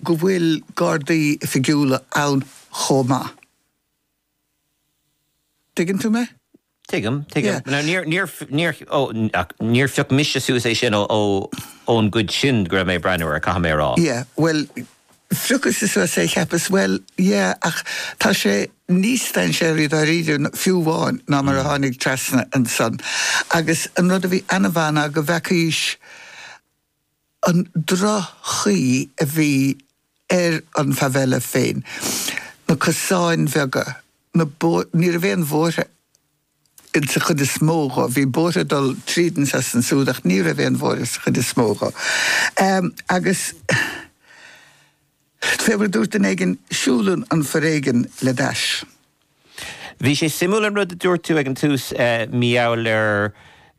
go bhfuil Gardaí oifigiúla ann chomh maith. Tuigeann tú mé? Tuigim, tuigim. Yeah. Níor, níor, níor, ó, ach níor phioc mise suas é sin ó, ó, ón gcuid sin go raibh mé ag breathnú air, caithfidh mé a rá. Yeah, bhuel, phiocas-sa suas é, cheapas, bhuel, yeah, ach tá sé níos dainséaraí dáiríre, fiú amháin, ná mar a tháinig trasna ansan. Agus an rud a bhí ann ná go bhfeacaís. an droch-chaoi a bhí ar an favela féin, na cosáin bheaga, na bóithre, ní raibh aon bhóithre insa chuid is mó dhe, bhí bóithre ag dul tríd anseo is ansúd ach ní raibh aon bhóithre sa chuid is mó dhe. Agus. Fé mar a dúirt duine éigin, siúlann an foréigean le d'ais. Bhí sé suimiúil an rud a dúirt tú ag an tús maidir le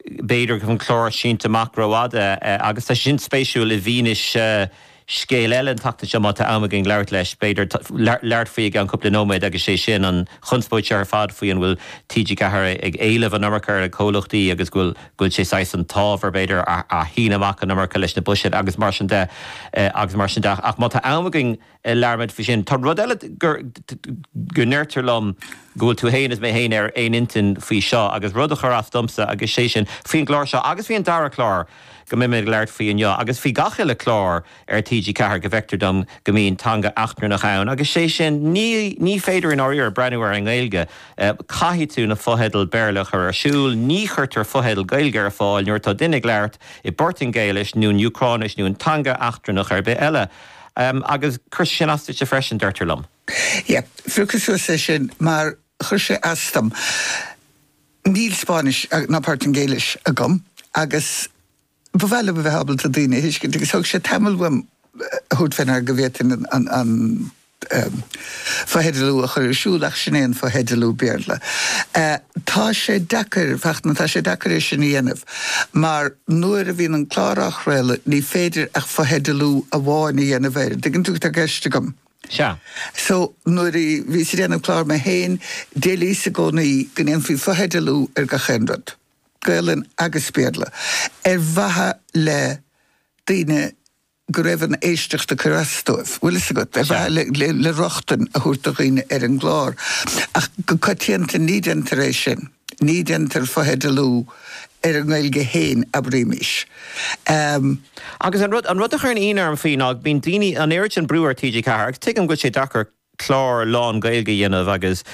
b'fhéidir go bhfuil an clár sínte amach rófhada agus tá sé sin spéisiúil i bhfianaise scéal eile an tseachtain seo má tá am againn labhairt leis b'fhéidir labhairt faoi i gceann cúpla nóiméad agus sé sin an chonspóid seo ar fad faoi an bhfuil TG4 ag éileamh an iomarca ar na comhluchtaí agus go bhfuil go bhfuil sé saghas an t-ábhar, b'fhéidir, a shíneadh amach an iomarca leis na buiséid agus mar sin de agus mar sin de. Ach má tá am againn labhróimid faoi sin. Tá rud eile go ndeirtear liom go bhfuil tú féin is mé féin ar aon intinn faoi seo agus rud a chuir as domsa agus sé sin faoin gclár seo agus faoi an dara clár go mbeimid ag labhairt faoi inniu agus faoi gach uile clár ar TG4 go bhfeictear dom go mbíonn teanga eachtrannach ann agus sé sin ní féidir i ndáiríre breathnú air i nGaeilge. Caithfidh tú na fotheidil Béarla a chur ar siúl. Ní chuirtear fotheidil Gaeilge ar fáil nuair atá duine ag labhairt i bPortaingéilis nó in Úcráinis nó in teanga eachtrannach ar bith eile. Agus chuir sé sin as duit freisin, deirtear liom. Yep. Phiocas suas é sin mar chuir sé as dom. Níl Spáinnis ná Portaingéilis agam agus. Ba mhaith liom a bheith ábalta daoine a thuiscint agus thóg sé tamall uaim a thabhairt fé ndeara go bhféadfainn an fotheidealú a chur ar siúl ach sin é an fotheidealú Béarla. Tá sé deacair, ach tá sé deacair é sin a dhéanamh mar nuair a bhíonn an clár á chraoladh ní féidir ach fotheidealú amháin a dhéanamh air, an dtuigeann tú cad tá i gceist agam? Sea. So, nuair a bhíos ag déanamh clár mé féin, d'éilíos i gcónaí go ndéanfaí fotheidealú ar gach aon rud. Gaelainn agus Béarla, ar mhaithe le daoine go raibh an éisteacht ag cur as dóibh, bhfuil fhios agat, ar mhaithe le le rochtain a thabhairt do dhaoine ar an gclár. Ach go coitianta ní déantar é sin, ní déantar fotheidealú ar an nGaeilge fhéin, abraímís. Agus an rud, an rud a chuireann ionadh orm faoi ná go mbíonn daoine, an oiread sin brú ar TG4 agus tuigim go bhfuil sé deacair, clár lán-Ghaeilge a dhéanamh agus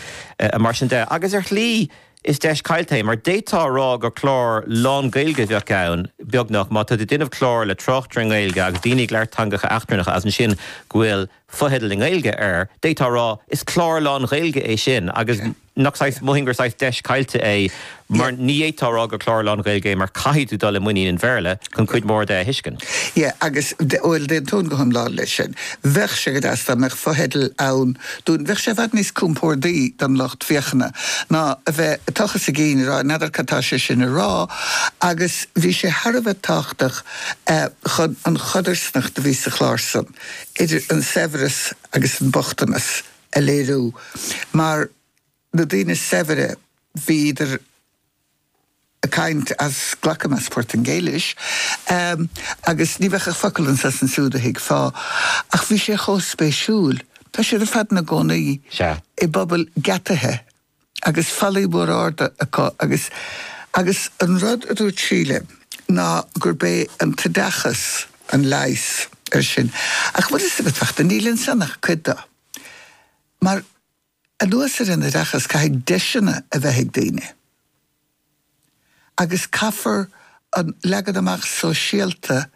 mar sin de. Agus ar shlí, is deis caillte é, mar d'fhéadfá a rá gur clár lán-Ghaeilge a bheadh ann, beagnach, má tá tú ag déanamh clár le tráchtairí Gaeilge agus daoine ag labhairt teangacha eachtrannacha as ansin go bhfuil fotheidil i nGaeilge air, d'fhéadfá a rá, is clár lán-Ghaeilge é sin agus. Nach saghas, mothaím gur saghas deis caillte é mar ní fhéadfá a rá gur clár lán-Ghaeilge é mar caithfidh tú dul i muinín an Bhéarla chun cuid mhór de a thuiscint. Yeah agus, bhuel d'aontóinn go hiomlán leis sin. Bheadh sé go deas dá mbeadh fotheidil ann dúinn, bheadh sé i bhfad níos compordaí don lucht féachana ná a bheith ag tochas a gcinn ag rá n'fheadar cad tá sé sin ag rá agus bhí sé thar a bheith tábhachtach chun an chodarsnacht a bhí sa chlár san idir an saibhreas agus an bochtanas a a léiriú mar na daoine saibhre bhíodar ag caint as, glacaim, as Portaingéilis agus ní bheadh ach focal anso is ansúd a thuigfeá. Ach bhí sé chomh spéisiúil. Tá siad ar fad ina gcónaí i bpobail geataithe agus fallaí mór arda acu agus, agus an rud a dúirt Síle ná gurb é an t-oideachas an leigheas ar sin. Ach bhfuil fhios agat, a Fhachtna, níl ansan ach cuid do. Mar, anuas ar an oideachas, caithfidh deiseanna a bheith ag daoine. Agus caithfear an leagan amach sóisialta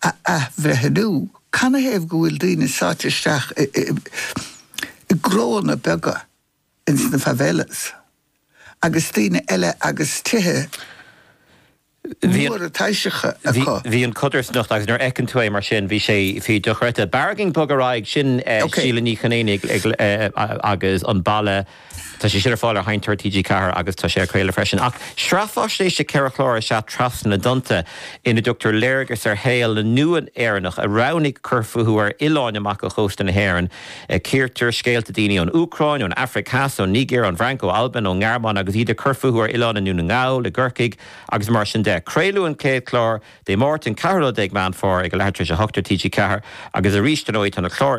a athbhreithniú. Canathaobh go bhfuil daoine sáite isteach i, i, i gcróanna beaga? ins na favelas agus daoine eile agus tithe móra taibhseacha acu. Bhí an codarsnacht agus nuair a fheiceann tú é mar sin bhí sé dochreidte. B'fhearr dhúinn bogadh ar aghaidh, sin Síle Ní Chonaonaigh agus An Baile tá sé sin ar fáil ar sheinnteoir TG4 agus tá sé á chraoladh freisin. Ach sraith faisnéise ceithre chlár is ea Trasna na dTonnta ina dtugtar léargas ar shaol na nua-Éireannach a roghnaigh cur fúthu ar oileáin amach ó chósta na hÉireann. Cíortar scéalta daoine ón Úcráin, ón Afraic Theas, ón Nigéir, ón bhFrainc, ó Albain, ón nGearmáin agus iad ag cur fúthu ar oileáin i nDún na nGall, i gCorcaigh agus mar sin de. Craoladh an chéad chlár Dé Máirt an 14ú Meán Fómhair ag a leathuair tar éis a hocht ar TG4 agus arís ar ndóigh tá na cláir